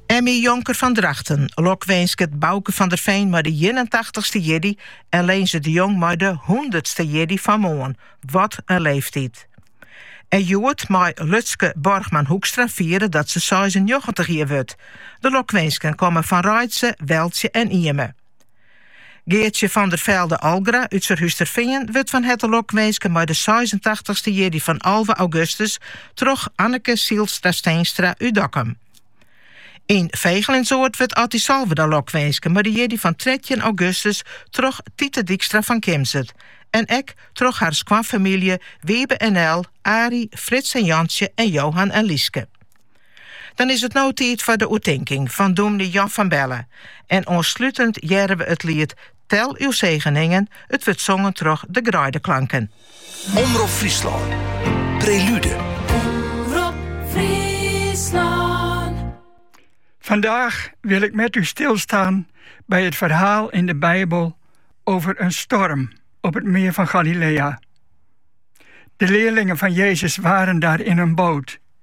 Emmy Jonker fan Drachten lokwinsket Bauke van der Veen mei de 81ste jierdei en Leenze de Jong mei de hûndertste jierdei fan moarn. Wat in leeftiid! En hjoed mei Lutske Borgman Hoekstra fiere dat se seisennjoggentich jier wurdt. De lokwinsken komme fan Reitse, Weltsje en Ieme. Geartsje van der Velde Algra út Surhústerfean wurdt fan herte lokwinske mei de seisentachtichste jierdei fan alve augustus troch Anneke Sielstra Steenstra út Dokkum. Yn Vegelinsoart wurdt Atty Salverda lokwinske mei de jierdei fan trettjin augustus troch Tite Dykstra fan Kimswert en ek troch har skoanfamylje Wiebe en Nel, Arie, Frits en Jantsje en Johan en Lyske. Dan is it no tiid foar de oertinking fan dûmny Jan van Belle en oanslutend hearre we it liet Tel uw zegeningen, it wurdt songen troch De Greideklanken. Omrop Fryslân, Prelude. Omrop Fryslân. Vandaag wil ik met u stilstaan bij het verhaal in de Bijbel over een storm op het meer van Galilea. De leerlingen van Jezus waren daar in een boot.